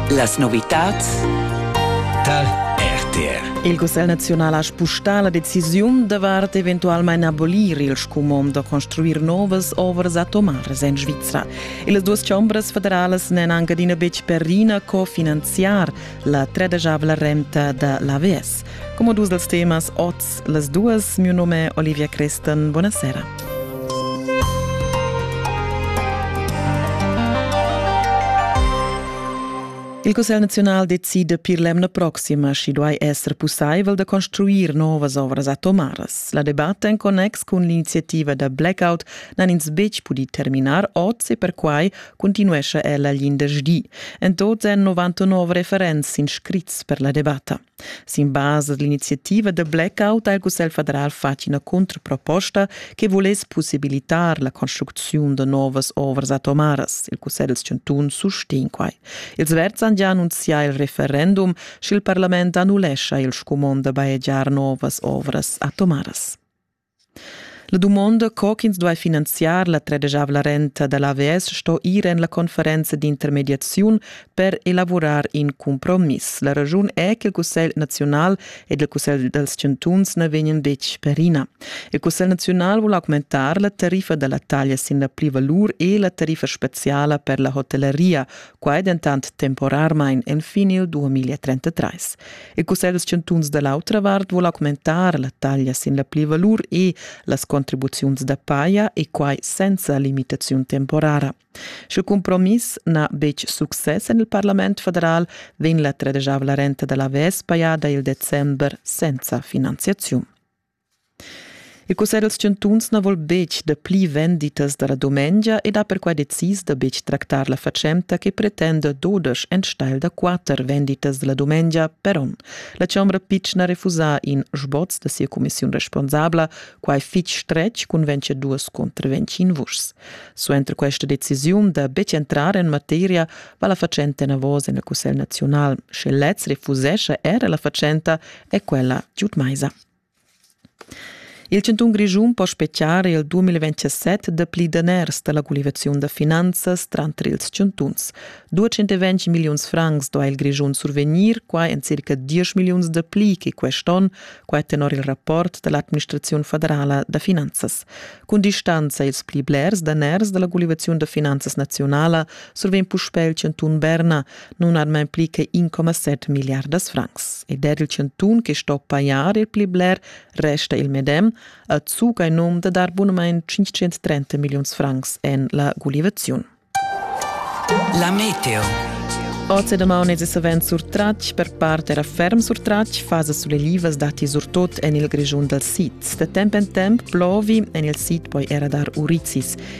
Las novitads tar RTR. Il Cussegl nazional ha spustà la decisiun davart eventualmain abolir il scumond da construir novas ovras atomaras en Svizra. Las duas chombras federalas n'èn anc adina betg per ina co finanziar la tredajavla renta da l'AVS. Como dus dels temas oz las duas, mio nome Olivia Cresten, buonasera. Il Cussegl nazional decide per l'emna proxima schi duai esser pussaivel da construir novas ovras atomaras. La debatta en connex cun l'iniziativa da blackout n'han ins betg pudi terminar oz e perquai continuescha ella l'indergdi. En tot èn 99 referents inscrits per la debatta. Sin basa dall'iniziativa da blackout ha il Cussegl federal fatg ina contraproposta che vuless possibilitar la construcziun da novas ovras atomaras. Il Cussegl dals chantuns sustegn quai. Ils verds han già annunzià il referendum, sch'il parlament annullescha il scumond da bajegiar novas ovras atomaras. La dumonda co ch'ins duai finanziar la tredegiavla renta da l'AVS sto ir en la conferenza d'intermediaziun per elavurar in cumpromiss. La raschun è che il Cussegl naziunal ed il Cussegl dals chantuns na vegnan betg perina. Il Cussegl naziunal vul augmentar la tariffa da la taglia sin la plivalur e la tariffa speziala per la hotelleria, Quai dentant temporarmain enfin il 2033. Il Cussegl dels chantuns da l'autra vart vuol augmentar la taglia sin la plivalur e las contribuziuns da paia e quai senza limitaziun temporara. Sch'il compromiss n'ha betg success en il Parlament federal, vegn la tredesavla renta da la VES pajada il december senza finanziaziun. Il cussegl dals chantuns na vul betg dapli venditas da la dumengia ed ha perquai decis da betg tractar la fatschenta che pretenda dudesch enstagl da quatter venditas da la dumengia per onn. La chombra pitschna refusa in sboz da sia cumissiun responsabla, quai fitg stretg cun venciaduas contr ventschin vuschs. Suenter questa decisiun da betg entrar en materia va la fatschenta enavos en il cussegl naziunal. Sche lez refusescha era la fatschenta, è quella giud maisa. Il chantun Grischun po spetgar il 2027 dapli daners da la gulivaziun da finanzas tranter ils chantuns. 220 milliuns francs duai il Grischun survegnir, quai en circa 10 milliuns dapli che quest onn, quai tenor il rapport da l'administraziun federala da finanzas. Cun distanza ils pli blers daners da la gulivaziun da finanzas nazionala survegn puspè il chantun Berna, nun han mai pli che 1,7 milliardas francs. Ed er il chantun che sto pajar il pli bler resta il medem, a zuga in um da dar bunamain 530 milliuns francs en la gulivaziun. La meteo. Oz e damaun es savens surtratg, per part era ferm surtratg, fasa sulelivas datti surtot en il Grischun dal sid. Da temp en temp plovi, en il sid poi era dar urizis.